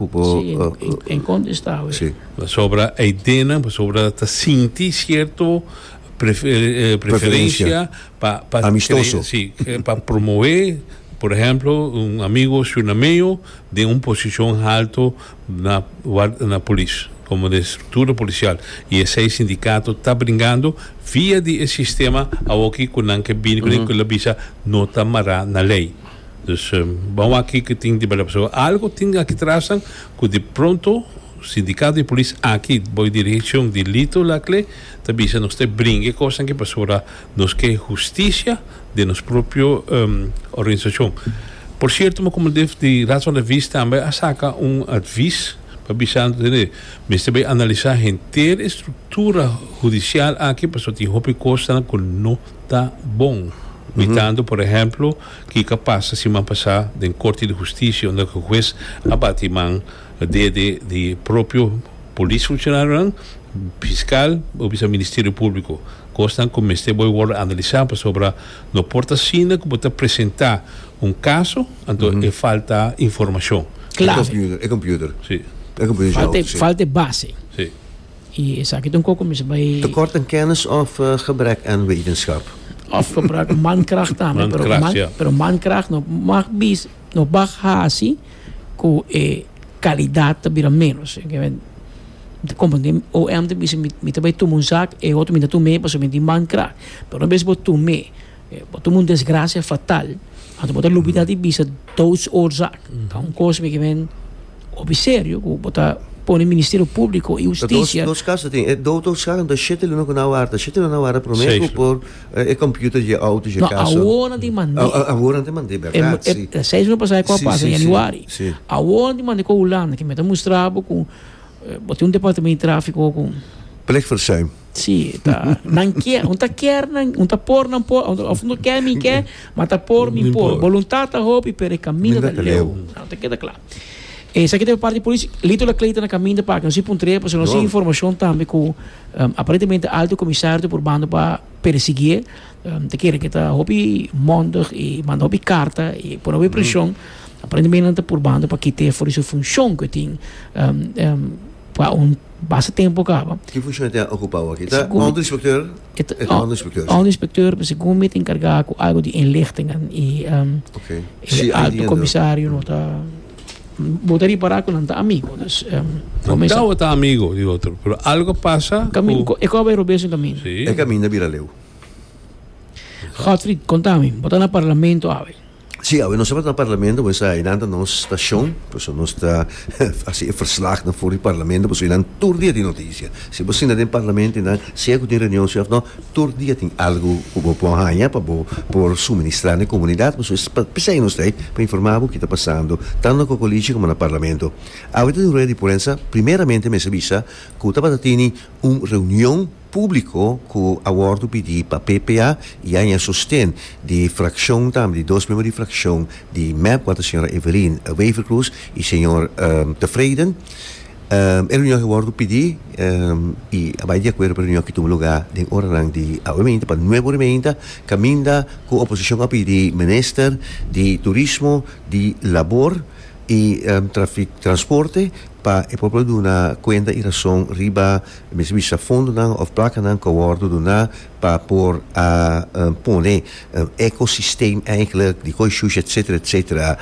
Cu bo Si, en conta esta awe. Si. Pasobra hay dena pasobra ta sinti cierto preferencia pa pa Amistoso. Si, pa promove, por ehemplo, un amigo Shunameo den un posicion halto na na polis, como den structura policial. Y esey sindicato ta bringando via di e sistema awoki cu nan ke bini cu den cu la bisa no ta mara na ley. Dus bo wak kiko tin riba dal pasobra algo tin aki trasnan ku di pronto sindikato di polis aki bou dirihishon di Lito Lacle ta bisa nos ta e bringa e kosnan aki pasobra nos ke hustisia den nos propio organisashon por sierto mi komo def di Raad van de Vis tambe a saka un advis pa bisando tene mester bai analisa henter e struktura hudisial aki pasobra tin hopi kosnan ku no. ta bon, mitando por ehemplo kiko a pasa siman pasá den Korte di Hustisia unda ku hues a bati man dede di propio polis funshonarionan, fiskal o biba Ministerio Públiko, kosnan ku mester bo a wòrdu analisá pasobra no por ta asina ku bo ta presentá un kaso anto e falta informashon. E computer, e computer. Si. E computer. Falta e base. Si. I esaki ta un koko mester bai. Tekort aan kennis of gebrek aan wetenschap. Of gebrek aan mankracht tambe. Pero mankracht no mag bisa, no mag haci cu e calidad ta bira menos. Como den OM ta bisa mi ta bai tuma un zak, e otro mi na tuma e pasobra mi tin mankracht. Pero no bes bo tuma e. Bo ta un desgracia fatal. Anto bo ta lubida di bisa doodsoorzaak. Ta un cos mi ke men hopi serio cu bo ta pone Ministerio Publico y Husticia. Ta dos caso tin. E doodsoorzaak anto e shete luna cu nan a warda. Shete luna nan a warda prome cu por e computer dje auto dje caso. No, awor nan tin mande. Awor nan tin mande, berdad, si. E seis luna pasa e cu a pasa den Januari. Awor nan tin mande cu Hulanda. Ke mi ta mustra bo cu bo tin un Departamento di Trafico cu. Plegverzuim. Sí, ta. Nan kier, un ta kier nan, un ta por nan por, of no kier mi kier, ma ta por mi por. Voluntad ta hopi, pero e camino ta leu. Nou ta keda kla. E sa kita parte policia, lito la kleita na caminda pa no si puntre, pa no si informacion tambe ku um, aparentemente alto comisario ta probando pa persigue, um, ta kere ke ta hopi mondig i manda hopi carta i pone hopi presion. Aparentemente nan ta probando pa kite for di su funcion ku tin um, um, Pa un basta tempu kaba. Ki funshon e tin okupa awa aki? E ta Onderinspekteur? E ta Onderinspekteur, si. Onderinspekteur, pero segun mi ta enkargá ku algu di inlichtingen i e Alto Komisario no ta. Bo ta ripará ku nan ta amigu, dus bo mester. Nan tabata ta amigu di otro, pero algu a pasa ku. E koba e robes un kaminda. Si. E kaminda a bira leu. Godfried, konta mi, bo ta na Parlamento awe. Si, awe nos tabata na parlamento pues einan ta nos stashon, pues nos ta hasi e verslag na for di parlamento, pues einan tur dia tin noticia. Si bo sinta den parlamento einan, sea ku tin reunion sea of no, tur dia tin algu ku bo por haña pa bo por suministra na e komunidat, pues es pa pesei nos ta ei pa informa bo ki ta pasando tantu na Kokolichi komo na parlamento. Awe ta tin rueda di prensa, primeramente mester bisa ku tabata tini un reunion. públiko ku a wòrdu pidi pa PPA i haña sosten di frakshon tambe di dos miembro di frakshon di mep wak ta señora Evelyn Wever-Croes i señor Tevreden. E reunion aki a wòrdu pidi i a bai di akuerdo pa e reunion aki tuma lugá den oranan di aweminta pa nueve ora i meinta kaminda ku oposishon a pidi minister di turismo, di labor i transporte pa e por por duna kuenta i rason riba E mester bisa fondonan of placanan cu a wordo duna pa por a pone ecosystem eigenlijk di Gooi Shush etc. Etc.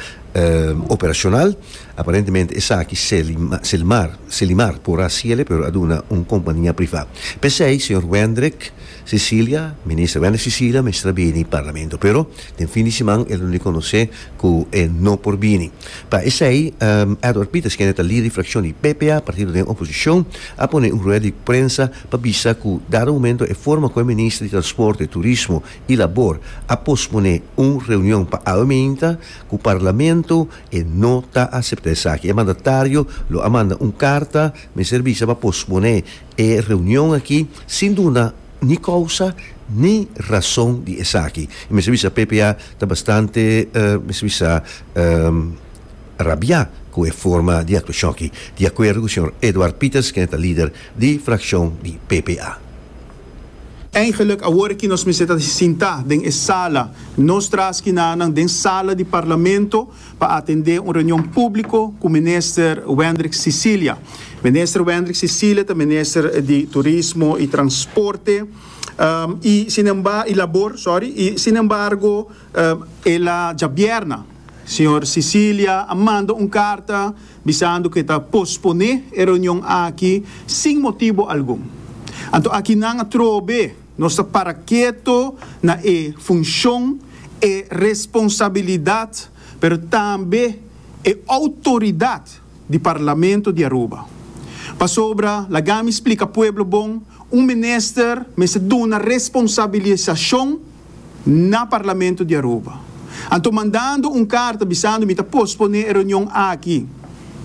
operacional. Aparentemente esaki Selimar por a haciele pero a duna un compania priva. P'esey, señor Wendrick, Cecilia, Minister Wende Cecilia mester a bini Parlamento pero den fin di siman el no reconoce cu e no por bini. Pa esey Edward Pieters kende ta lider di fraccion di PPA, partido den oposicion, a pone un rueda di prensa pa bisa cu dado momento e forma cu e Minister di Transporte, Turismo y Labor a pospone un reunion pa awe meinta cu Parlamento e no ta acepta esaki. E mandatario lo a manda un carta mester bisa pa pospone E reunion aki sin duna ni kousa ni rason di esaki. I mester bisa PPA ta bastante mester bisa rabiá ku e forma di aktuashon aki, di akuerdo ku señor Edouard Pieters kende ta lider di frakshon di PPA. Eingelik awor aki nos mester ta sintá den e sala, nos traski nanan den sala di parlamento, pa atendé un reunion públiko ku minister Wendrick Cicilia. Minister Wendrick Cicilia ta minister di Turismo i Transporte i sinemba i Labor, sorry, i sinembargo el a djabièrna señor Cicilia a manda un karta bisando ku e ta posponé e reunion aki sin motibu algun. Anto aki nan a trobe. Nos ta para keto na e funshon, e responsabilidat pero tambe e outoridat di Parlamento di Aruba. Pasobra, laga mi splika pueblo bon, un minister mester duna responsabilisashon na Parlamento di Aruba. Anto mandando un karta bisando mi ta posponé e reunion aki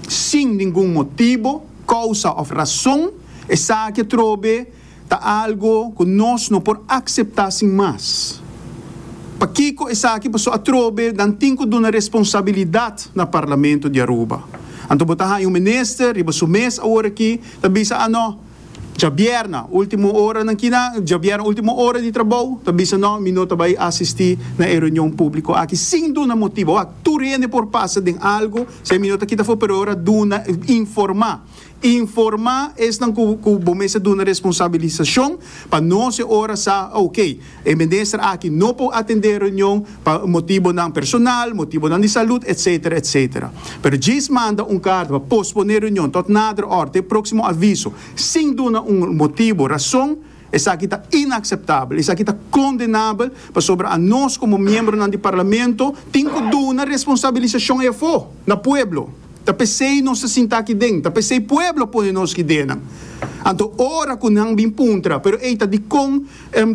sin ningun motibo, kousa of rason, esaki atrobe, ta algu ku nos no por akseptá sin mas. Pakiko esaki paso atrobe nan tin ku duna responsabilidat na Parlamento di Aruba? Anto bo ta haña un minister riba su mes awor aki ta bisa a no Djabièrna último oranan kinan Djabièrna último ora di trabou ta bisa no mi no ta bai asistí na e reunion públiko aki sin duna motibu. Tur hende por pasa den algu si mi no ta kita for pero ora duna informá Informa esnan ku ku bo mester duna responsabilisashon pa nos e ora sa ok. E minister aki no por atendé reunion pa motibonan personal, motibonan di salud, etcetera, etcetera. Pero djis manda un karta pa posponé reunion tot nader ora, te próksimo aviso, sin duna un motibo, rason, Esaki ta inakseptabel, esaki ta kondenabel pasobra anos komo miembronan di Parlamento tin ku duna responsabilisashon ei afó na pueblo. Ta p'esei nos ta sinta aki den, ta p'esei pueblo a pone nos ideanan. Anto ora ku nan bin puntra, pero ei ta dikon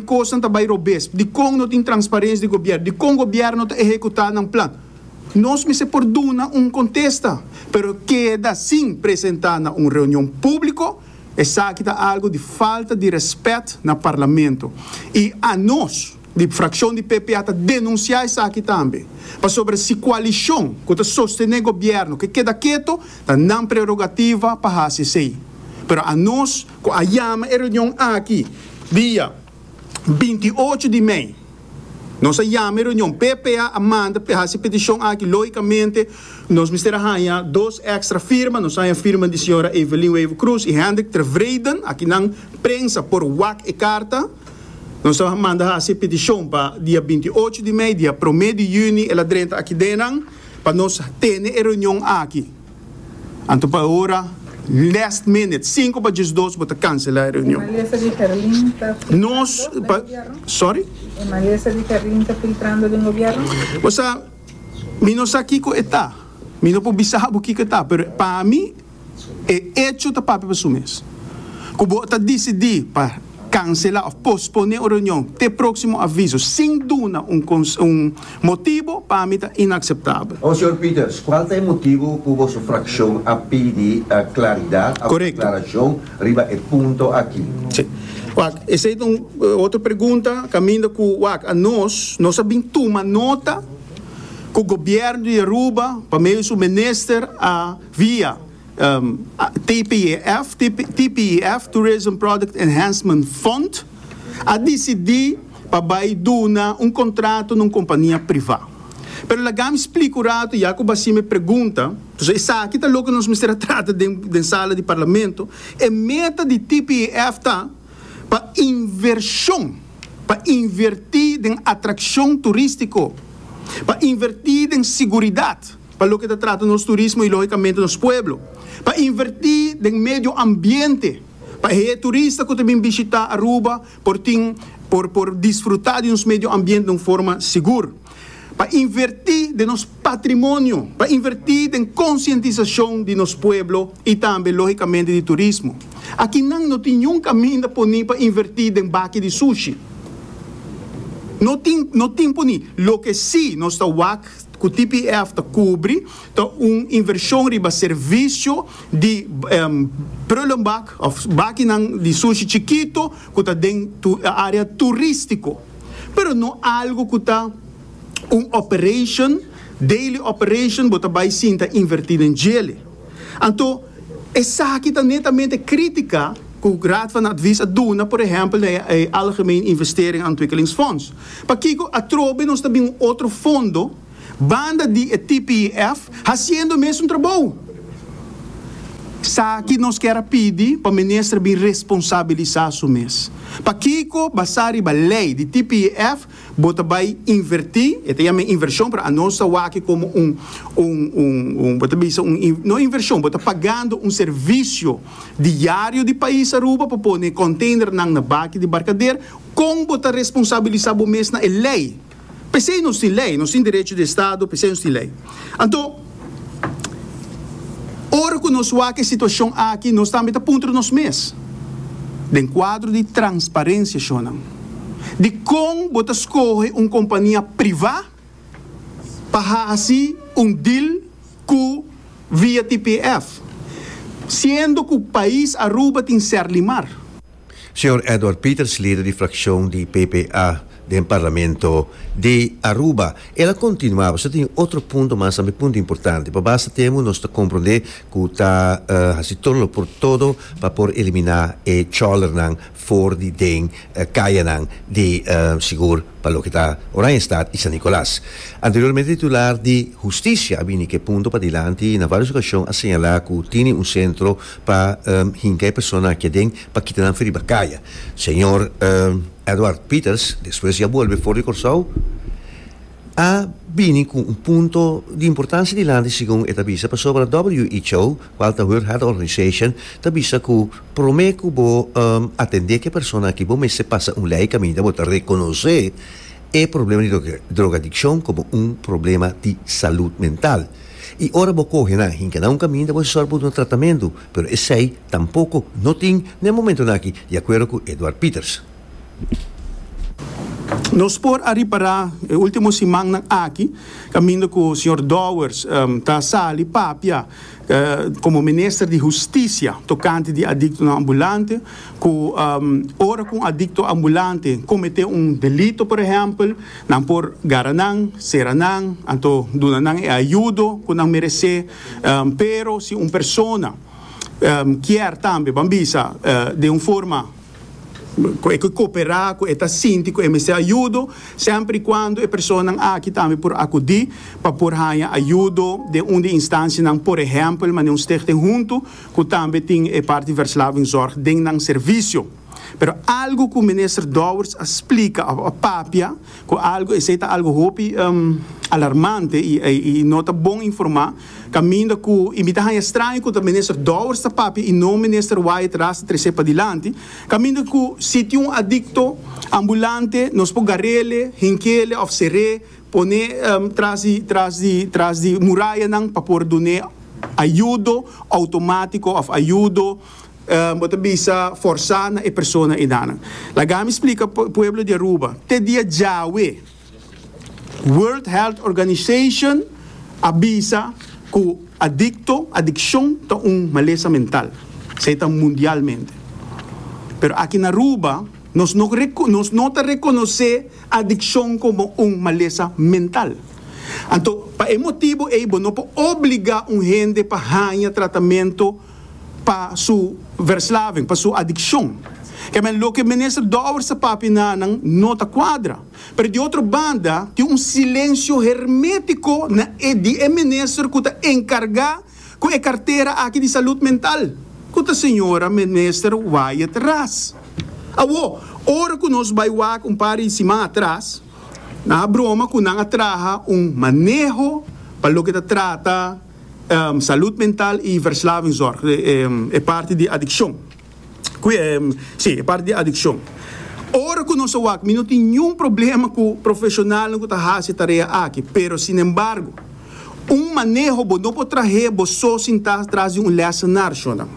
kosnan ta bai robes, dikon no tin transparens di gobièrnu, dikon gobièrnu ta ehekutá nan plan, nos mester por duna un kontesta, pero keda sin presentá na un reunion públiko. Esaki ta algo di falta di rèspèt na parlamento i anos di frakshon di PPA ta denunsiá esaki tambe pasobra si koalishon ku ta sostené gobièrnu ke keda keto ta nan prerogativa pa hasi esei pero anos ku a yama e reunion aki dia binti ocho di mei Nos a yama e reunion. PPA a manda p'e hasi e peticion aki. Logicamente nos mester a haña dos extra firma. Nos a haña firma di señora Evelyn Wever Croes y Hendrik Tervreden. Aki nan prensa por wak e carta. Nos a manda hasi e peticion pa dia binti ocho di mei, dia prome di juni el a drenta aki den nan pa nos tene e reunion aki. Anto pa e ora last minute sinku pa djes dos bo ta kansela e reunion. Nos pa sorry. Bo sa mi no sa kiko e ta mi no por bisa bo kiko e ta pero pa mi e echo ta papia pa su mes ku bo ta disidi pa. Kanselá òf posponé un reunion te próksimo aviso sin duna un motibu pa mi ta inakseptabel. Konsehor Peters, kual ta e motibu ku boso frakshon a pidi klaridat òf aklarashon riba e punto aki? Sí. Wak, esei ta un otro pregunta kaminda ku wak a nos, nos a bin tuma nota ku Gobièrnu di Aruba pa medio di su minister a via. TPEF, TPEF, Tourism Product Enhancement Fund, a disidí pa bai duna un kontrato na un kompania privá. Pero lagami splika un ratu ya ku b'así mi pregunta, so esaki ta loke nos mester a trata den den sala di Parlamento, e meta di TPEF ta pa invershon, pa invertí den atrakshon turístiko, pa invertí den siguridat. pa loke ta trata nos turismo y logicamente nos pueblo, pa inverti den medio ambiente pa e turista cu ta bin bishita Aruba por tin por por disfruta di nos medio ambiente den un forma sigur, pa inverti den nos patrimonio, pa inverti den concientisacion di nos pueblo y tambe logicamente di turismo. Aki nan no tin niun caminda poni pa inverti den baki di sushi, no tin no tin poni, loke si nos ta wak. ku TPF ta kubri ta un invershon riba servisio di prullenbak òf bakinan di sushi chikitu ku ta den área turístiko, pero no algu ku ta un operation, daily operation, bo ta bai sinta invertí den djele. Anto, esaki ta netamente kritika ku Raad van Advies a duna, por ehèmpel na e Algemeen Investering en Ontwikkelingsfonds. Pakiko atrobe nos ta bin un otro fondo banda di e TPIF hasiendo mesun trabou? Sa ki nos kier a pidi pa minister bin responsabilisá su mes. Pakiko basá riba lei di TPIF bo ta bai inverti, e ta yam'e invershon, pero anos ta wak komo un, un, un, un, bo ta bisa un, no invershon, bo ta pagando un servisio diario di pais Aruba pa pone e konteinernan na baki di barkader, kon bo ta responsabilisa bo mes na e lei? P'esei nos tin lei, nos tin derecho di estado, p'esei nos tin lei. Anto. Ora cu nos wak e situacion aki nos tambe ta puntra nos mes, den cuadro di transparencia shonnan, dicon bo ta scoge un compania priva pa haci un deal cu via TPF, siendo cu pais Aruba tin Serlimar? Señor Edward Peters, lider di fraccion di PPA den Parlamento di Aruba, el a continua, Nos ta tin otro punto mas tambe, punto importante. Pa basta tempo nos ta comprende cu ta haci todo lo por todo pa por elimina e chòlernan for di den cayanan di Sigur pa loke ta Oranjestad y San Nicolas. Anteriormente titular di Husticia a bini cu e punto padilanti y na varios ocasion a señala cu tini un centro pa hinka e persona aki aden pa kita nan fo riba kaya. Señor Edward Peters, despues di a bolbe for di Kòrsou, a bini ku un punto di importansia dilanti segun e ta bisa, pasobra WHO, kual ta World Health Organization, ta bisa ku promé ku bo atendé ku e persona aki bo mester pasa un lei kaminda bo ta rekonosé e problema di drogadikshon komo un problema di salud mental. I ora bo kohe nan hinka na un kaminda bo sòru pa duna tratamentu, pero esei tampoko no tin den momentunan aki, di akuerdo ku Edward Pieters. Nos por a ripará e último simannan aki kaminda ku señor Dowers ta sali papia komo Minister di Hustisia tokante di adiktonan ambulante. cu ora cu un adicto ambulante comete un delito por ehempel, nan por gara nan, cera nan, anto duna nan e ayudo cu nan merece. Pero si un persona kier tambe ban bisa den un forma cu e ke coopera cu e ta sinti cu e mester ayudo, semper y cuando e personanan aki tambe por acudi pa por haya ayudo den un di e instancianan, por ehempel manera un stichting hunto. ku tambe tin e parti verslavingzorg den nan servisio. Pero algu ku Minister Dowers a splika òf a papia ku algu esei ta algu hopi alarmante i i no ta bon informá kaminda ku i mi ta haña straño ku ta Minister Dowers ta papia i no Minister Wyatt Ras ta tres'é padilanti kaminda ku si tin un adikto ambulante nos por gar'ele, hink'ele òf ser'é Pone tras di tras di tras di murayanan pa por dun'é ayudo outomatiko òf ayudo, bo ta bisa, forsá na e persona edanan. Laga mi splika pueblo di Aruba, te dia djawe World Health Organization a bisa ku adikto, adikshon, ta un malesa mental. Esei ta mundialmente. Pero aki na Aruba nos no nos no ta rekonosé. adiccion como un malesa mental. Anto, pa e motibo ey bo no por obliga un hende pa haña tratamento pa su verslaving, pa su adiccion. Kemey loke Minister Dower sa papia na nan no ta cuadra. Pero di otro banda tin un silencio hermetico na e di e Minister cu ta encarga ku e kartera aki di salud mental ku ta señora minister Wyatt Ras. Awo, ora ku nos bai wak un par di siman atras, nan a broma ku nan a traha un maneho pa loke ta trata salud mental i verslavingzorg, e parti di adikshon. si, e parti di adikshon. Ora ku nos a wak mi no tin niun problema ku profeshonalnan ku ta hasi e tarea aki, pero sinembargo un maneho bo no por trah'é bo so sintá tras di un lèsenar, shona.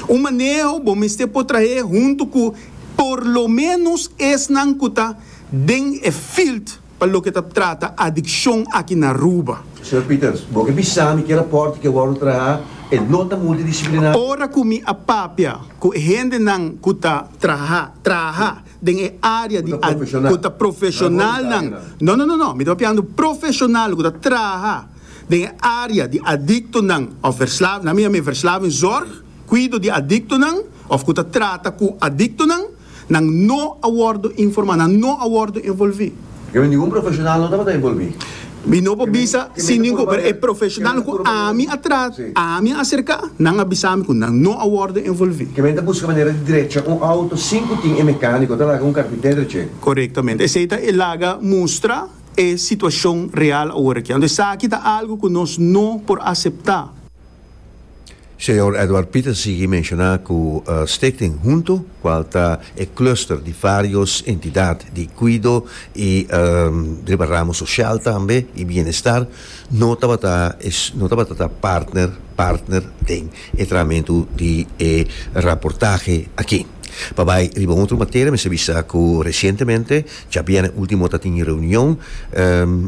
Un maneho bo mester por trah'é huntu ku por lo ménos esnan ku ta den e field. Pa loke ta trata adiccion aki na Aruba. Señor Peters, bo ke bisa mi ke raport ke wordo traha e no ta multidisciplinario? Ora ku mi a papia ku e hendenan ku ta traha traha den e área di adiccion, ku ta profeshonalnan, no no no no, mi ta papiando profeshonal ku ta traha den e área di adiktonan òf verslavinan, mi a mi verslavingzorg, kuido di adiktonan òf ku ta trata ku adiktonan. Nan no a wordo informá. Nan no a wordo envolví. Kaminda ningun profeshonal no tabata envolví. Mi no por bisa si ningun, pero e profeshonal ku ami a trat, ami a aserká, nan a bisa mi ku nan no a wordo envolví. Kaminda ta buska manera di drecha un outo sin ku tin e mekániko ta laga un karpinter drech'é. Korektamente. Esei ta e laga mustra e situashon real awor akí. Anto esaki ta algu ku nos no por aseptá. Señor Edward Pieter sigui menshona cu Stichting Hunto, cual ta e cluster di varios entidad di cuido y riba ramo social tambe y bienestar, no tabata no tabata ta partner partner den e trahamentu di e raportahe aki. Pa bay riba un otro materia mester bisa cu recientemente, djabièrnè ultimo ta tin reunion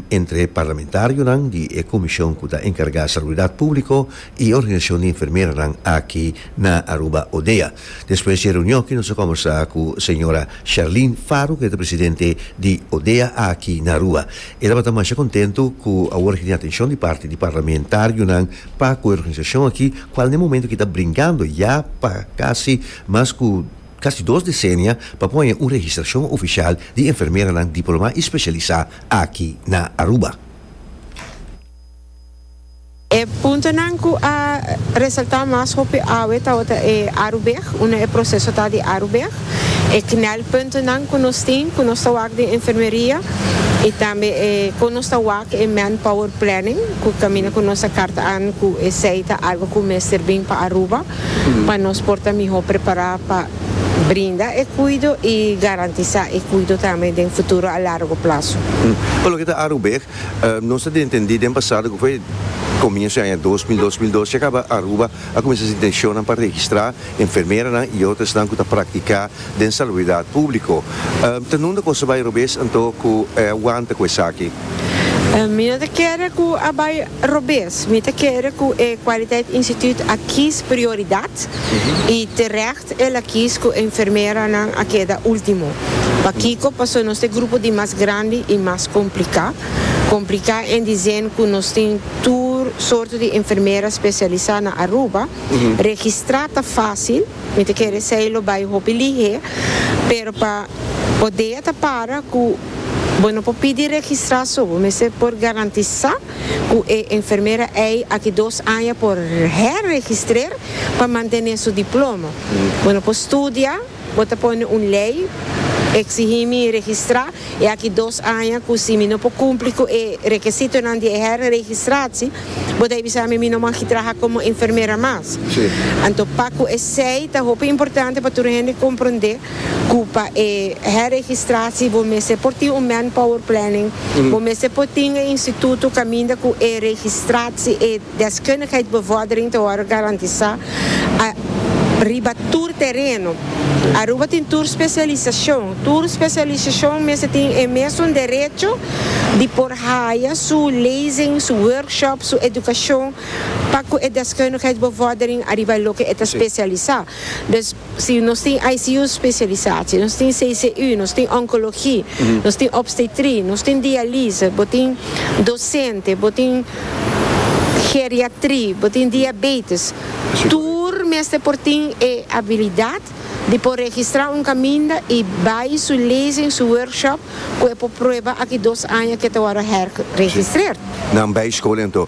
entre parlamentarionan di e comision cu ta encarga Salubridad Publico, y Organisacion di Enfermeranan aki na Aruba, ODEA. Despues di e reunion aki nos a conversa cu Sra. Charlene Faro cu e ta Presidente di ODEA aki na Aruba. E tabata masha contento cu awor aki tin atencion di parti di Parlamentarionan pa cu e organisacion aki, cual na e momento aki ta brincando ya pa casi mas cu casi dos decenia, pa pon haña un registracion oficial di enfermeranan diploma y specialisa aki na Aruba. E puntonan ku a resaltá mas hopi awe tabata e arubeg, unda e proseso ta di arubeg, e knèlpuntonan ku nos tin ku nos ta wak den enfermeria i tambe e kon nos ta wak e manpower planning ku kaminda ku nos ta karta an ku esei ta algu ku mester bin pa Aruba pa nos por ta mihó prepará pa brinda e kuido i garantisá e kuido tambe den futuro a largo plaso. Ku loke ta arubeg? Nos a entendí den pasado, ku fue komienso di aña dos mil dos, mil dos, ya kaba Aruba a kuminsá su intenshonnan pa registrá enfermeranan i otro esnan ku ta praktiká den salubridat públiko. Ta nunde ku Asobay robes anto ku e a wanta ku esaki? Mi no ta kere ku a bai robes. Mi ta kere ku e Kwaliteit Instituut a kies prioridat. Y terecht el a kies cu e enfermeranan a keda ultimo. Pakico? Pasobra nos ta e grupo di mas grandi y mas complica. Complica en dicen cu nos tin tur sorto di enfermera specialisa na Aruba. Registra ta facil, mi ta kere esey lo bay hopi lihe, pero pa bo dea ta para cu bo no por pidi registra so, bo mester por garantisa. ku e enfermera ei aki dos aña por herregistrer pa mantené su diplomo. Bo no por studia, bo ta pone un lei eksigí mi registrá e aki dos aña ku si mi no por kumpli ku e rekesitonan di e herregistrasie bo ta bisa mi mi no magi traha komo enfermera mas. Anto pa ku esei ta hopi importante pa tur hende komprondé cu pa e herregistratie bo mester por tin un manpower planning, bo mester por tin e instituto caminda cu e registratie, e deskundigheidsbevordering ta wordo garantisa riba tur tereno. Aruba tin tur specialisacion, tur specialisacion mester tin e mesun derecho di por haya su lezing, su workshop, su educacion pa cu e deskundigheidsbevordering ariba loke e ta specialisa. Si nos tin ICU specialisa, si nos tin CCU, nos tin oncologi, nos tin obstetri, nos tin dialise, bo tin docente, bo tin geriatri, bo tin diabetes, tur mester por tin e habilidad di por registra un caminda y bay su lezing, su workshop cu e por prueba aki dos aña cu e ta worde herregistrer. Nan bay school enton.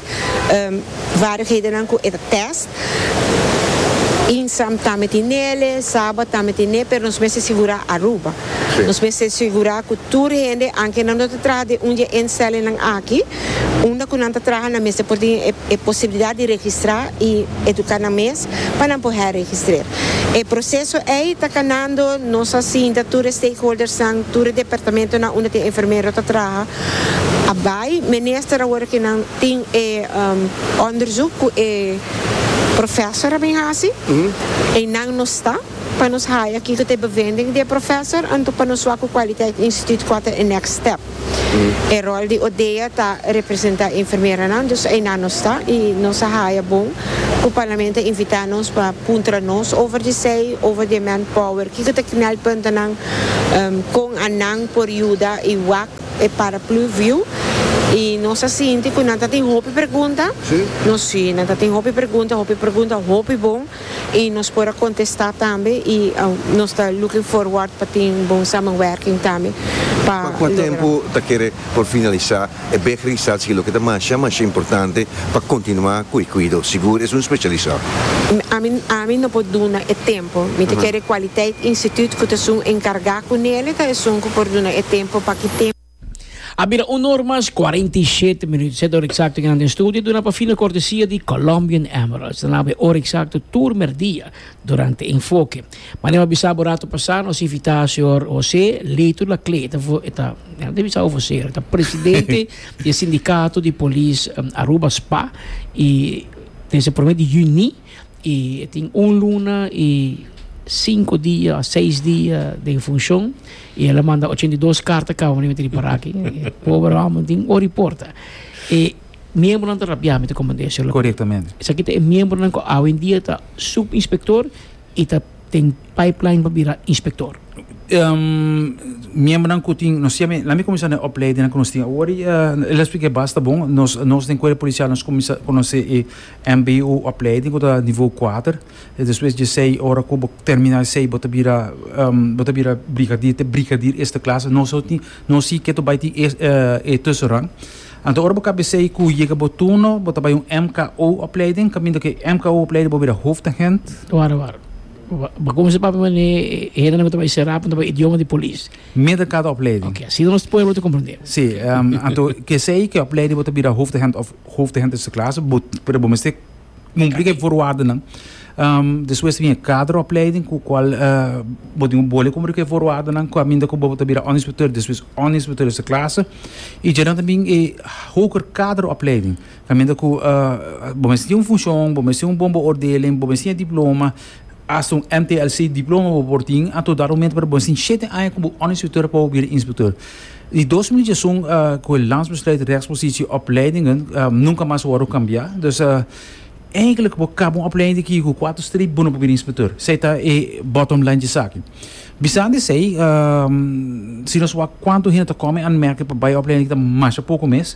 Vaardighedennan ku e ta test. Insam tambe tin nele, Saba tambe tin ne, pero nos mester sigurá Aruba. Nos mester sigurá ku tur hende, anke nan no ta traha den un di e instellingnan aki, unda ku nan ta traha nan mester por tin e posibilidat di registrá i eduká nan mes pa nan por herregistrer. E proseso ei ta kanando, nos a sinta tur e stakeholdersnan, tur e departamentonan unda tin e enfermero ta traha, A bai minister awor aki nan tin e onderzoek cu e professor a bin haci, y nan no sta pa nos haya aki cu ta e bevinding di e professor, anto pa nos wak cu Kwaliteit Instituut qua ta e next step. E rol di ODEA ta representa e enfermeranan, dus eynan no sta y nos a haya bon cu Parlamento a invita nos pa puntra nos over di esey, over di e manpower, kico ta knelpuntonan Kon a nan por yuda i wak e paraplu viu? I nos a sinti ku nan ta tin hopi pregunta? Nos si, nan ta tin hopi pregunta, hopi pregunta hopi bon i nos por a kontestá tambe i nos ta looking forward pa tin bon samenwerking tambe pa logra. Pa kua tempu ta kere por finalisá E bejri sa si loke ta masha masha importante pa kontinuá ku e kuido, sigur es un spesialisá. Ami ami no por duna e tempu. Mi ta kere Kwaliteit Instituut ku ta esun enkargá ku Nele ta esun ku por duna e tempu pa ki tempu. A bira un or mas kuarenta i shete minüt. Set or eksakto kenda den studio duna pa fino kortesia di Colombian Emeralds. Ta naba e or eksakto tur merdia. Durante Enfoke. Manera mi a bisa bo rato pasá, nos invitá señor José Leyton Laclé. E ta, e ta bisa over señor, e ta presidente di e sindicato di polis Aruba, spa, i desde e prome di juni i e tin un luna i sinku dia òf seis dia den funshon i el a manda ochenta i dos karta kaba mi mester di para aki. Pober hòmber tin ora i porta. E Miembronan ta rabiá met e komandia Sherlock. Korektamente. Esaki ta e miembronan ku awendia ta subinspektor i ta den pipeline pa bira inspektor. miembronan ku tin, nos tin ami, lami kuminsá na e opleidinan ku nos tin awor. El a spliká bas, ta bon, nos, nos den Cuerpo Policial nos kuminsá konosé e MBO opleiding ku ta nivo kuater. I despues dje sei, ora ku bo terminá e sei bo ta bira, bo ta bira brigadier, te brigadier eerste klasse. Nos a tin, nos si ke ta bai tin e tussenrang. Anto ora bo kabesei i ku yega bo turno, bo ta bai un MKO opleiding, kaminda ku e MKO opleiding bo bira hoofdagent. Wara wara. Bo a kuminsa papia manera e hendenan ku ta bai será punta bai idioma di polis. Midden kada opleiding. Oke, asina nos pueblo ta komprendé. Si, anto kesei ku e opleiding bo ta bira hoofdagent òf hoofdagent eerste klasse, bo pero bo mester cumpli cu e voorwaardennan. Despues ta bin e kaderopleiding cu cual bo tin un bole cumpli cu e voorwaardennan caminda cu bo ta bira onderinspecteur despues onderinspecteur di su clase. Y djera ta bin e hoger kaderopleiding caminda cu bo mester tin un funcion, bo mester tin un bon beoordeling, bo mester tin e diploma. Hasta un MTLC diploma bo por tin a todo argumento pero bo tin shete aña ku bo onderinstrukteur pa bo bira instrukteur. Di dos mil diezun ku e Landsbesluit Rechtspositie Opleidingen nunka mas a wòrdu kambiá. Dus eindelijk bo kaba un opleiding di kiko kuater streep bo no por bira instrukteur. Esei ta e bottom line di esaki. Bisando esei si nos wak kuantu hende ta kòmen anmèrke pa bai opleiding ta masha poko mes.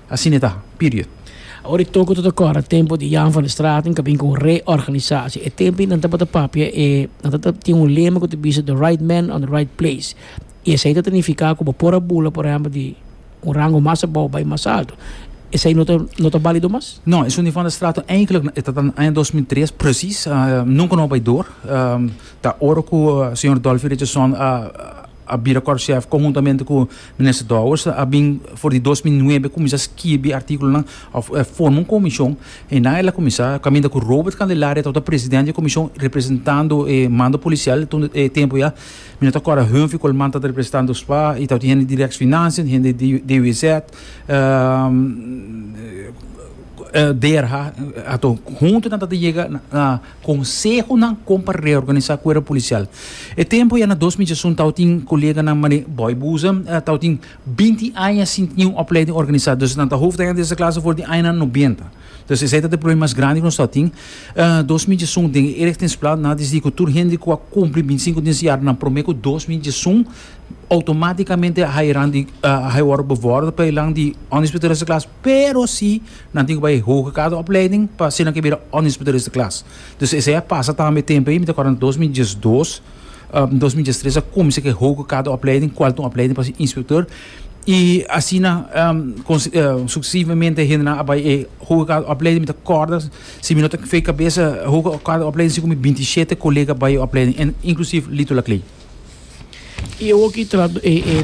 Asina e ta. Period. Awor e toko ta ta kòrda tempu di Jan van der Straten ka bin ku un reorganisasie. E tempu ei nan tabata papia e, nan ta tin un lema ku ta bisa the right man on the right place. I esei ta ta nifiká ku bo por a bula por ehèmpel di un rango mas abou bai mas altu. Esei no ta no ta balido mas? No, esun di van der Straten eigentlik e ta ta na aña dos mil tres presis. Nunka no a bai dor. Ta ora ku señor Dolfi Richardson a. a bira Corcef conhuntamente cu Minister Dowers a bin for di dos mil nuebe cuminsa skibi articulonan of forma un comision y nan el a cuminsa caminda cu Robert Candelaria tawata president di e comision representando e mando policial tun e tempo ya mi no ta acorda Hunphy Colman tawata representando Dspa y tawata hende di Rex Financian y hende di DWZ DRH hunto nan tawata yega na Konsehonan kon pa reorganisá kuerpo polisial. E tempu ya na dos mi djasun tao tin koleganan manera Boy Buza, tao tin binti aña sin tin un opleiding organisá, dus nan ta hofdanya dese klas for di añanan nobenta. Dus esei ta ta e problema mas grandi ku nos tao tin. Dos mi djasun den e Erichtingsplaat nan a desidí ku tur hende ku a kumpli binti sinku di siñar nan promé ku dos mi djasun outomátikamente a hayeran di, a haywòrdu bevòrdu pa e lan di Ondisputador dese klas. Pero si nan tin ku bai e hoge grado opleiding pa asina ke bira ònnispu di reste klas. Dus esei a pasa tambe tempu ei, mi ta kòrda dos mil diesdos, dos mil dies tres a kuminsá ku e hoge grado opleiding kual ta un opleiding pa ser inspektor i asina suksesivamente hendenan a bai e hoge grado opleiding. Mi ta kòrda, si mi no ta fei kabesa, e hoge grado opleiding si ku mi binti shete kolega bai e opleiding en inklusief Lito Laklei. I e oki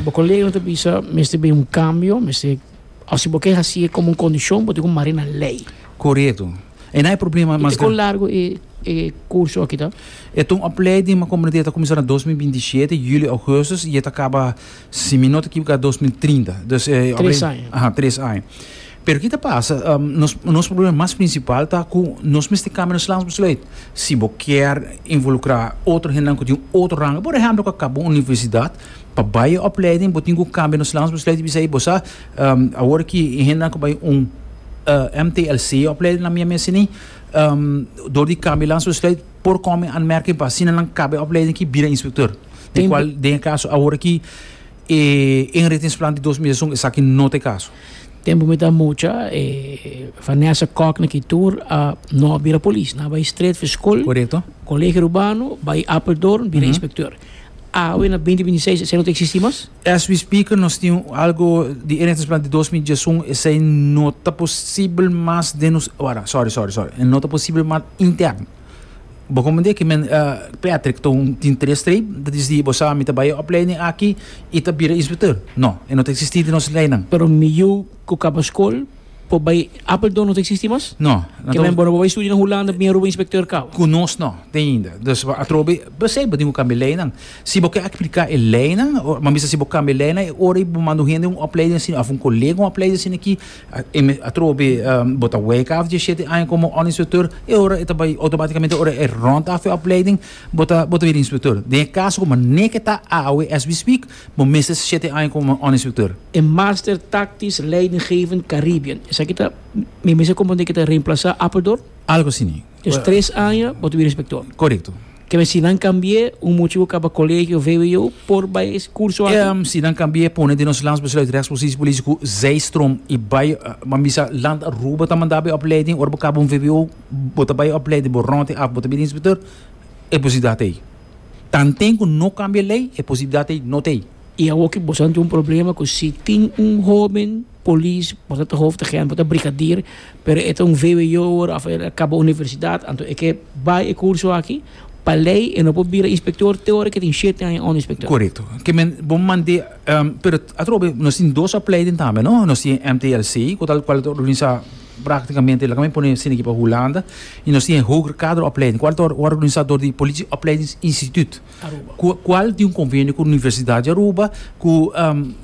bo koleganan ta bisa mester bai un kambio, mester. O si bo ke hasi e komo un kondishon bo tin ku mar'é na lei. Korekto. E na e problema mas gran. I te kon largu e e kurso aki ta? E ta un opleiding ma komo no di'a e ta kuminsá na dos mil binti shete, julio, augustus, i e ta kaba si mi no ta ekivoká dos mil trinta. Dus e Tres aña. Aha, tres aña. Pero ki ta pasa, nos nos problema mas prinsipal ta ku nos mester kambia nos lans besluit. Si bo kier involukrá otro hendenan ku tin otro ranga, por ehèmpel ku a kaba un universidat. Pa bai opleiding bo tin ku kambia nos lans bo sluit bisa ei bo sa awor ki e hendenan ku bai un MTLC opleiding na mia mes sini dor di kambia lans bo sluit por kòm e anmerking pa asina nan kaba e opleiding aki bira instruktor te kual den e kaso awor aki e inritingsplan di dos mil dies i un esaki no ta e kaso. Tempu ku mi ta mucha e Vanessa Kok na ki tur a no a bira polis nan a bai stret for skol Korekto. Kolegio Rubano bai Apeldoorn bira inspektor Awe na binti binti seis esei no ta existi mas. As we speak nos tin algo di inentrance plan di dos mil diesun esei no ta posibel mas den nos wara sorry sorry sorry e no ta posibel mas interno bo comprende ki men Patrick ta un tin tres streep ta dici di bo sa mi ta bai e opleiding aki i ta bira inspector no e no ta existi den nos lei nan. Pero mi yu ku kaba skol. Por bai Apeldoorn no ta existi mas? No. Ke men bo no por bai studia na Hulanda bini Aruba inspecteur cabo? Cu nos no ta ainda. Dus atrobe, p'esei bo tin cu cambia leynan. Si bo ke aplica e leynan, bo a bisa si bo cambia leynan e ora bo manda un hende un opleiding asina of un colega un opleiding asina aki, atrobe bo ta weka af diesisiete aña como un inspecteur, e ora e ta bai automaticamente, ora e rond af e opleiding bo ta, bo ta bira inspecteur. Den e caso cu manera ke ta awe as we speak. Bo mester shete aña como un instructor. E Master Tactisch Leidinggevend Caribbean, esaki ta, mi mester comprende ke ta reemplasa Apeldoorn? Algo así ni. Dus tres aña bo ta bira inspector. Correcto. Keme si nan cambie, un mucha cu caba colegio of vwo por bay e curso aki? Ehm, si nan cambie pone den nos landsbesluit rechtspositie politico zijstroom y bay, bo bisa land Aruba ta manda bo e opleiding, ora bo caba un vwo bo ta bay e opleiding, bo rond e af, bo ta bira inspector, e posibilidad ta ey. Tanten cu no cambia ley, e posibilidad ey no t'ey. Y awor cu boso a tin un problema cu si tin un hoben polis, boso ta hoofdagent, boso ta brigadier, pero e ta un vwo awor of e a caba universidad, anto e ke bay e curso aki, pa ley e no por bira inspector te ora cu e tin shete aña unda inspector. Corecto. Ke men bo mande, pero atrobe nos tin dos opleiding tambe, no? Nos tin e MTLC, cu tal cual ta organisa. Praktikamente laga mi pone sina aki pa Hulanda i nos tin e Hoger Kaderopleiding, kual ta organisá dor di Politie Opleidings Instituut, kual tin un konvenio ku Universidat di Aruba, ku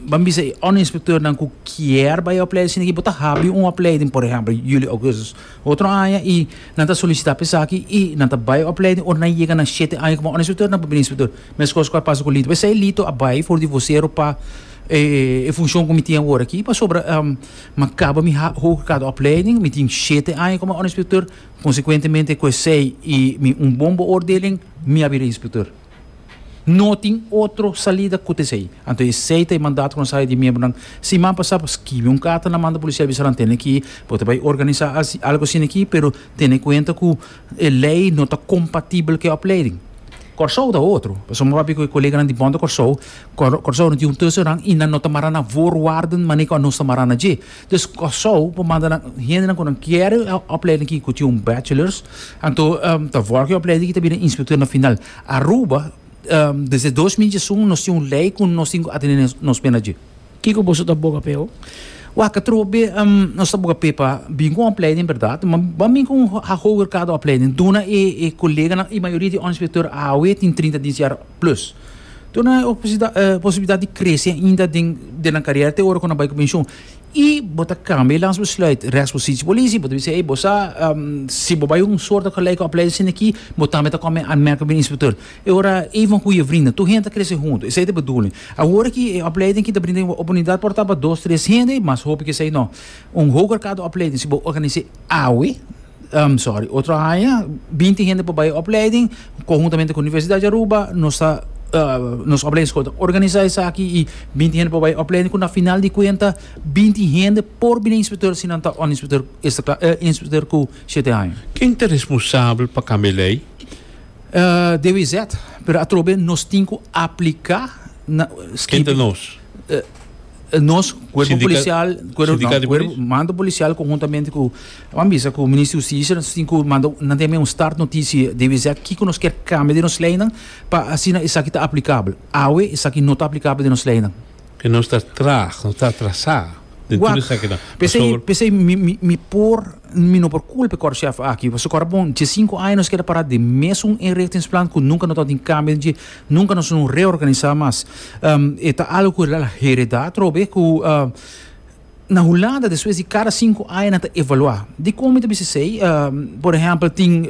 ban bisa e onderinspektèrnan ku kier bai a opleiding sina aki, bo ta habri un opleiding, por ehèmpel, yuli, ougùstus otro aña i nan ta solisitá pa esaki i nan ta bai opleiding ora nan yega na shete aña kuma onderinspektèr nan por bini inspektor. Meskos kual pasa ku Lito. P'esei Lito a bai for di Vosero pa e funshon ku mi tin awor aki pasobra Mi kaba mi Hoge Kaderopleiding, mi tin shete aña komo onderinspekteur, konsekuentemente ku esei i mi un bon beoordeling, mi a bira inspekteur. No tin otro salida kut esei. Anto esei ta e mandato ku nan sa di miembronan, siman pasá por skibi un karta nan manda polisial bisa nan tene ki bo ta bai organisá algu asina aki, pero tene kuenta ku. E lei no ta kompatibel ku e opleiding. Kòrsou ta otro. Pasobra mi papia ku e koleganan di Bond Kòrsou, Kòrsou no tin un tese nan i nan no ta mara na voorwaarden manera ku anos ta mara na dje. Dus Kòrsou por manda nan, hendenan ku nan kere e opleiding aki ku tin un bachelors, anto ta vòrdu ku e opleiding aki ta bira inspektor na final. Aruba, desde dos mil diesun nos tin un lei ku nos tin ku atende nos pena dje. Kiko boso ta boga p'e ho? Waka trobo be nos ta boga p'e pa bin ku un opleiding berdad, ma ban bin ku un hoger kada opleiding. Duna e koleganan, e mayoria di un inspektor awe tin trinta di siña plus. Duna nan e posibilidat di krese ainda den den nan karera te ora ku nan bai ku penshon. I bo ta kambia e lans besluit. Rèksposisi polisi bo ta bisa ei bo sa si bo bai un sòrta gelijke opleiding sindi aki bo tambe ta kòm e anmèrk pa bini inspektor. E ora ey van huye vrinda. Tur hende ta crece hunto. Esey ta e bedoeling. Awor aki e opleiding aki ta brinda e oportunidad por ta pa dos, tres hende, mas hopi ke esey no. Un hoger kado opleiding si bo organise awe, um, sorry, otro aña, binti hende por bay e opleiding, conhuntamente cu Universidad di Aruba, nos ta, uh, nos opleiding school ta organisa esaki y binti hende por bay e opleiding cu na final di cuenta binti hende por bini inspector si nan ta underinspector, uh, inspector cu shete aña. Ken ta responsabel pa cambia e ley? de WZ, pero atrobe nos tin ku apliká na Kente nos? nos cuerpo Sindica, policial cuerpo, no, cuerpo mando policial conjuntamente ku wan bisa ku minister justicia nos tin ku mando nan tem un start noticia de WZ kiko nos ker cambia de nos leynan pa asina esaki ta aplicable awe esaki no ta aplicable de nos leynan Ke nos ta traag, nos ta atrasá den tur Wak, esaki nan. P'esei, Pasobra. p'esei mi, mi, mi por, mi no por culpa e kòrchèf aki, pasobra kòrda bon, dje sinku aña nos keda pará den mesun inrichtingsplan ku nunka no tabata tin kambio den dje, nunka nos no reorganisá mas. E ta algu ku e heredá atrobe ku. Na Hulanda despues di cada sinku aña nan ta evaluá. Dikon mi ta bisa esei? Por ehèmpel tin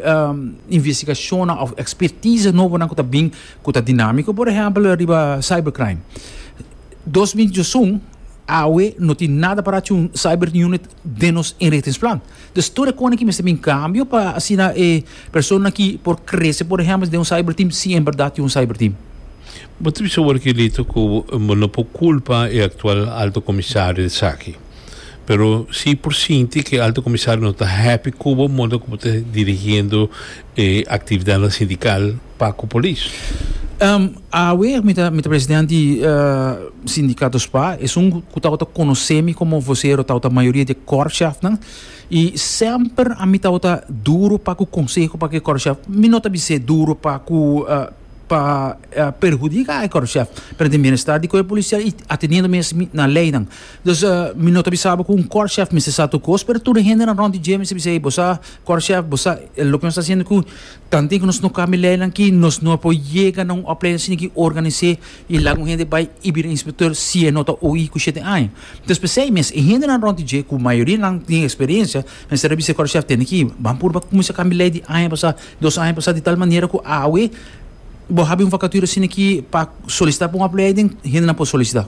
investigacionnan of expertise nobo nan ku ta bin ku ta dinámiko, por ehèmpel riba cyber crime. Dos mil diosun awe no tin nada pará cu un cyber unit den nos inrichtingsplan. Dus tur e kosnan ki mester bin kambio pa asina e personanan ki por krese por ehèmpel den un cyber team si en bèrdat tin un cyber team. Bo ta bisa ora Gilito ku bo no por kulpa e aktual Alto Komisario di esaki. Pero si por sinti ku e Alto Komisario no ta happy ku bo modo ku bo ta dirigiendo e aktividatnan sindikal pa ku polis. Awe mi ta mi ta president di Sindikato spa, esun ku tabata konosé mi komo vosero tabata mayoria di e kòrpshèfnan i semper ami tabata duru pa ku konseho pa ku e kòrpshèf. Mi no ta bis'é duru pa ku. pa perhudika e korpshèf pero den bienestar di kuerpo polisial y ateniendo mes na leynan dus mi no ta bisa bo ku un korpshèf mester sa tur kos pero tur e hendenan rònt di dje mester bisa ey bo sa korpshèf bo sa loke nos ta hasiendo ku tanti ku nos no kambia leynan aki nos no por yega na un opleiding shini ki organis'é y laga un hende bai y bira inspector si e no ta oí ku shete aña entonces p'esei mes e hendenan rònt di dje ku mayoria nan tin eksperiencia mester a bisa e korpshèf tende ki bo a purba kuminsá kambia ley di aña pasá. Dos aña pasá di tal manera ku awe bo habi un vakatura asina aki pa solisitá pa un apleiden, hendenan por solisitá.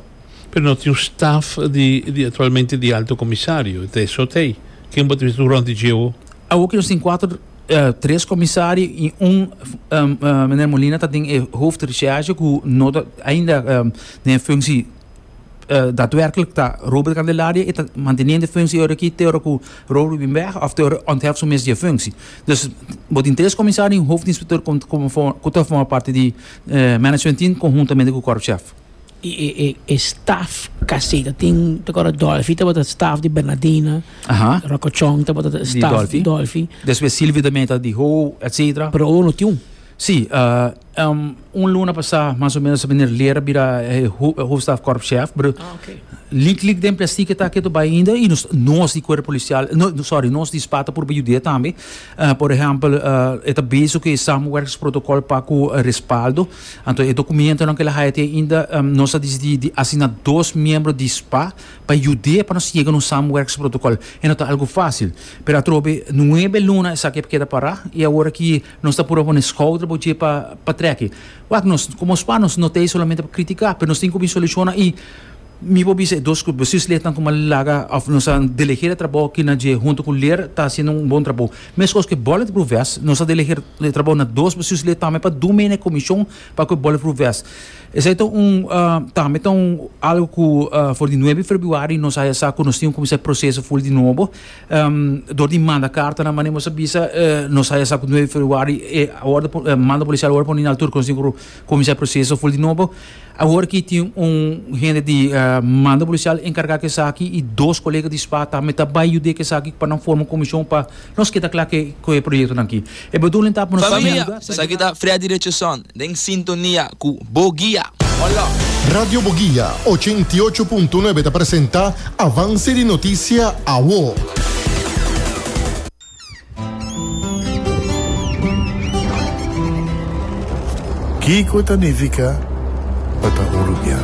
Pero no tin un staf di aktualmente di Alto Komisario, ta eso ta ei. Ken bo ta bisa tur rònt di djeu? Awoki nos tin kuater, tres komisario i un Meneer Molina ta den e hoofdrecherche ku no ta ainda den e funsie. uh, daadwerkelijk ta Robert Candelaria e ta manteniendo functie ora ki te ora ku Robert bin weg of te ora ontheft su mes di functie. Dus bo tin tres comisario en hoofdinspecteur kon ku ta forma parte di uh, management team conjuntamente ku korpschef. E, e, e, e staff caseta tin te kora Dolphy te bota staff di Bernardina. Aha. Rocochon te bota staff di Dolphy. Después Silvio de Meta di Ho, etcetera. Pero uno tiun. Sí, un luna pasá mas o ménos meneer Leer a bira e Hoofdstaf Korpschef, pero lik lik den plestique ta ketu bai ainda y nos nos di Cuerpo Policial, sorry, nos di SPA ta purba yud'é tambe. Por ehempel, e ta bezig cu e Samenwerkingsprotocol pa cu Respaldo, anto e documentonan cu el a haya te ainda, nos a dicidí di asigna dos miembro di SPA pa yud'é pa nos yega na un Samenwerkingsprotocol. E no ta algu fácil, pero atrobe nuebe luna esaki a keda pará y awor aki Nos ta purba pone schouder bo dje pa pa treki. Wak nos como spa nos no ta ahí solamente pa critica pero nos tin cu bin soluciona y mi por bisa e dos grupo bestuur slechtnan como a laga of nos a delegera trabao kina dje hunto cu ler ta haciendo un bon trabao. Mescos cu e bulletproof vest nos a delegera e trabao na dos bestuur sled tambe pa dun mey na e comision pa cu e bulletproof vest. Esai ta un tambe ta un algo cu for di nuebe februari nos a sa cu nos tin cu cuminsa e proceso full di nobo. Dor di manda kartanan manera nos a bisa nos haya sa ku nueve februari e mando polisial orde pone na altur konosí ku kuminsá e proseso ful di nobo. Awor aki tin un hende di mando polisial enkargá ku esaki i dos kolega di spa tambe ta bai yud'é ku esaki pa nan forma un komishon pa nos keda kla ku e proyektonan aki. E bedoeling ta pa nos bai na lugar. Esaki ta Freddy Richardson den sintonia cu Boguia. Hola! Radio Boguia ochenta i ocho punto nuebe ta presenta Avance di Noticia Awo. Kico ta nifica pa ta un rubian?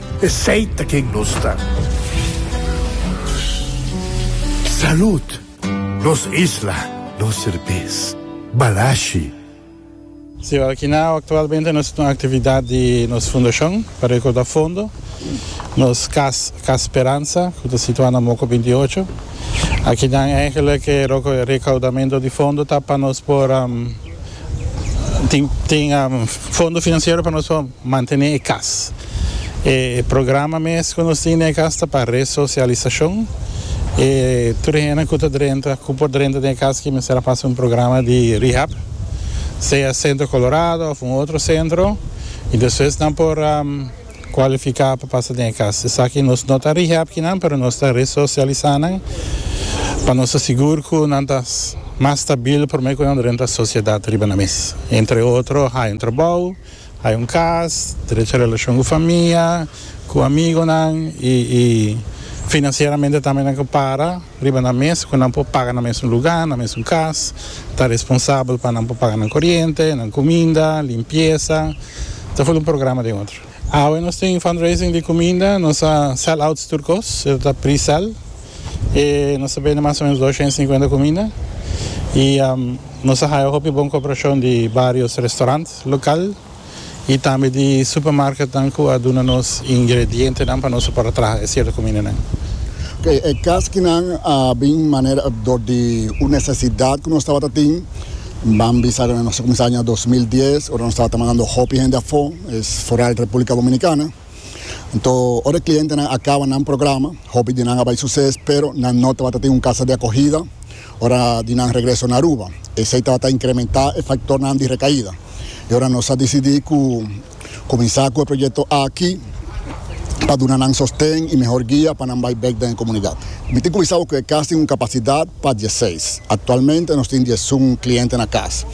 Esey ta ken nos ta. Salud! Nos isla, nos serbes. Balashi. Siwa Alkinao aktualmente nos ta na aktividat di nos fundashon pa rekorda fondo. Nos kas, Kas Speransa, ku ta situá na Moko binti ocho. Aki nan, ègèlek e rekaudamentu di fondo ta pa nos por. Tin tin fondo financiero pa nos pa mantene e cas. E programa mes cu nos tin den e cas ta pa resocialisacion. E tur hende cu ta drenta cu por drenta den e cas ki mester a pasa un programa di rehab, sea Centro Colorado of un otro centro y despues nan por. Cualifica pa pasa den e cas. Esaki nos no ta rehab kinan pero nos ta resocialisa nan pa nos ta sigur cu nan ta mas stabil prome cu nan renta sociedad riba nan mes. Entre otro hay un trabou, hay un cas, derecha relacion cu famia, cu amigonan y financieramente tambe nan cu para. Riba nan mes cu nan por paga nan mesun luga, nan mesun cas, ta responsabel pa nan por paga nan coriente, nan cuminda, limpieza, ta full un programa den otro. Awe nos tin fundraising di cuminda, nos a sell outs tur cos, eso ta pre-sell, y nos ta bende mas o menos doscientos cincuenta cuminda, y nos a haya hopi bon cooperacion di varios restaurant local. y tambe di supermarketnan cu a duna nos ingredientenan pa nos a por a traha e cierto cumindanan. E caschinan a bin manera dor di un necesidad cu nos tabata tin. Ban bisa nos a cuminsa aña dos mil dies ora nos tabata mandando hopi hende afo, foral Republica Dominicana. Anto ora e klientenan a kaba nan programa, hopi di nan a bai suses, pero nan no tabata tin un kasa di akogida ora di nan regreso na Aruba. Esei tabata inkrementá e faktornan di rekaida. I ora nos a disidí ku kuminsá ku e proyekto aki pa duna nan sosten i mehor guia pa nan bai bèk den e komunidat. Mi tin kuminsá bo ku e kas tin un kapasidat pa dieseis. Aktualmente nos tin diesun kliente na kas.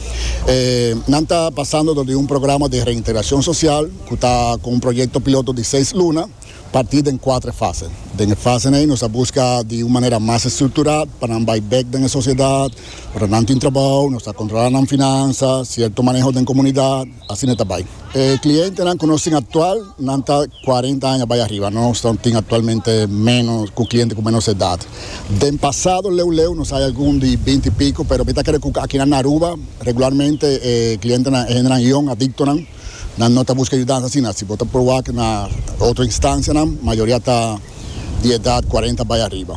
Nan ta pasando dor di un programa di reintegrashon sosial. cu ta cu un proyecto piloto di seis luna, parti den cuatre fase. Den e fasen ey nos a busca di un manera mas estructura pa nan bay bek den e sociedad, ora nan tin trabao, nos ta controla nan finansa, cierto maneho den comunidad, asina ta bay. E clientenan cu nos tin actual, nan ta cuarenta aña bay ariba, nos ta tin actualmente menos, cu cliente cu menos edad. Den pasado leu leu nos hay algun di binti y pico, pero mi ta cre cu aki na Aruba regularmente e clientenan e hendenan yong, adictonan. Nan no ta buska yudansa asina. Si bo ta proba aki na otro instancianan, mayoria ta di edad cuarenta bay ariba.